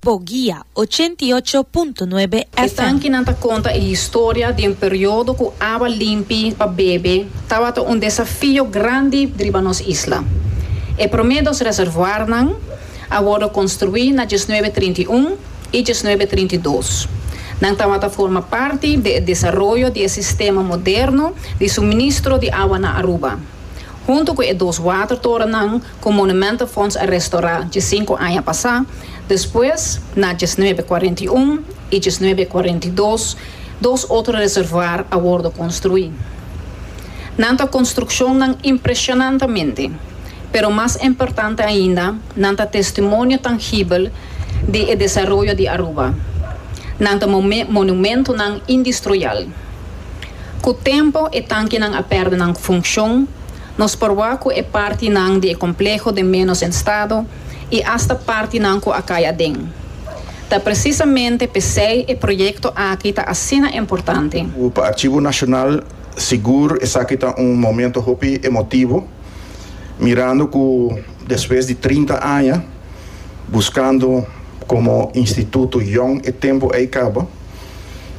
Bo guia, ochenta i ocho punto nuebe E FM. tankinan ta konta e historia di un periodo ku awa limpi pa bebe tabata un desafio grandi riba nos isla. E promé dos reservoarnan a wòrdu konstruí na diesnuebe trinta i un i diesnuebe trinta i dos. Nan tabata forma parti di e desaroyo di e sistema moderno di suministro di awa na Aruba. Huntu ku e dos watertorennan ku Monumentenfonds a restorá dje sinku aña pasá, despues na djes nuebe kuarenta i un i djes nuebe kuarenta i dos dos otro reservuar a wòrdu konstruí. Nan ta konstrukshonnan impreshonantamente, pero mas importante ainda nan ta testimonio tangibel di e desaroyo di Aruba. Nan ta monumentonan indistroyal. Ku tempu e tankinan a pèrdè nan funkshon, Nos por wak cu e partinan di e compleho den menos en stado y hasta partinan cu a cay aden. Ta precisamente pesey e proyecto aki ta asina importante. Cu pa Archivo Nacional sigur esaki ta un momento hopi emotivo, mirando cu despues di trinta aña buscando como instituto yong e tempo ey caba,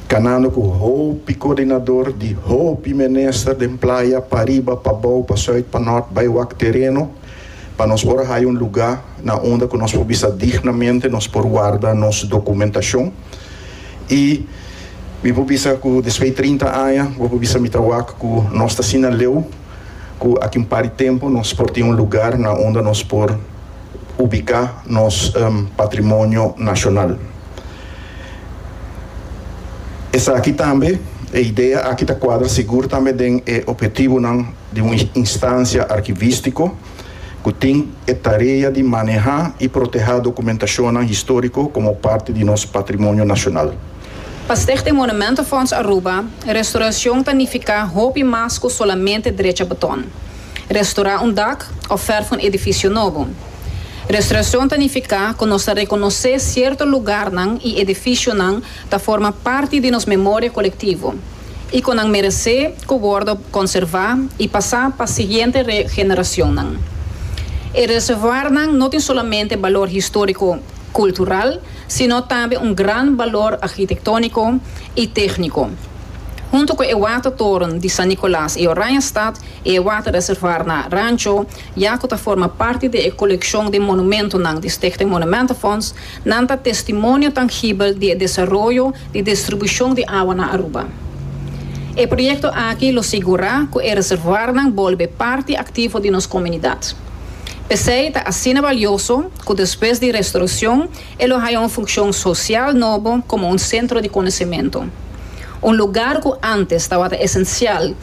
Kanando ku hopi koordinador di hopi menister den playa pariba, pabou, pa sùit, pa nòrt bai wak tereno pa nos por a haya un lugá na unda ku nos por bisa dignamente, nos por warda nos dokumentashon. I mi por bisa ku despui trinta aña bo por bisa mi ta wak ku nos ta asina leu. cu aki un par di tempo nos por tin un lugar na unda nos por ubica nos patrimonio nacional. Esaki tambe, e idea aki ta cuadra sigur tambe den e objetivonan di un instancia archivistico cu tin e tarea di maneha y proteha documentacionnan historico como parti di nos patrimonio nacional. Pa Stichting Monumentenfonds Aruba, restoracion ta nifica hopi mas cu solamente drecha beton, restora un dak of verf un edificio nobo. Restoracion ta nifica cu nos ta reconoce cierto lugarnan y edificionan ta forma parti di nos memoria colectivo y cu nan merece cu wordo conserva y pasa pa siguiente generacionnan. E reservoirnan no tin solamente balor historico cultural, sino tambe un gran balor arkitektóniko i tékniko. Huntu ku e watertoren di San Nikòlas i Oranjestad i e waterreservoar na Rancho, ya ku ta forma parti di e kolekshon di monumentonan di Stichting Monumentenfonds, nan ta testimonio tangibel di e desaroyo di distribushon di awa na Aruba. E proyekto aki lo sigurá ku e reservoarnan bolbe parti aktivo di nos komunidat. P'esei ta asina balioso ku despues di restauracion e lo haña un funcion social nobo komo un centro di conocimento. Un lugar ku antes tabata esencial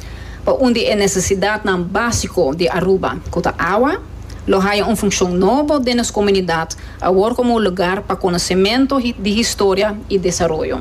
pa un di e necesidadnan básico di Aruba, ku ta awa, lo haña un funcion nobo den nos comunidad awor komo un lugar pa conocimento di historia i desaroyo.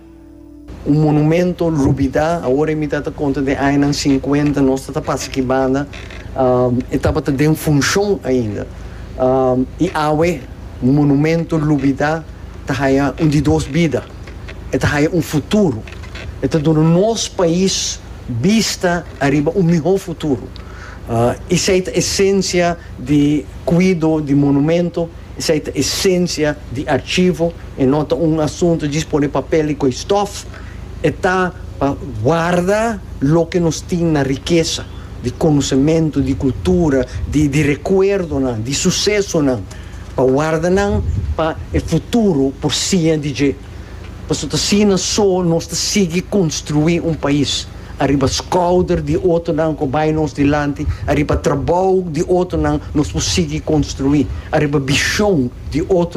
Un monumento rubida awor e mi ta ta konta den añanan sinkuenta nos ta ta pasa ki banda e tabata den funshon ainda i awe un monumento rubida ta haña un di dos bida e ta haña un futuro e ta duna nos pais bista ariba un mihó futuro esei ta esensia di kuido di monumento. Esei ta esensia di archivo, e no ta un asunto djis pone papel i koe stof, e ta pa warda loke nos tin na rikesa di konosementu, di kultura, di di rekuerdonan, di susesonan, pa warda nan pa e futuro por siña di dje. Pasobra ta asina so nos ta sigui konstruí un pais, ariba skouder di otonan ku bai nos dilanti, ariba trabou di otonan nos por sigui konstruí, ariba bishon di otronan.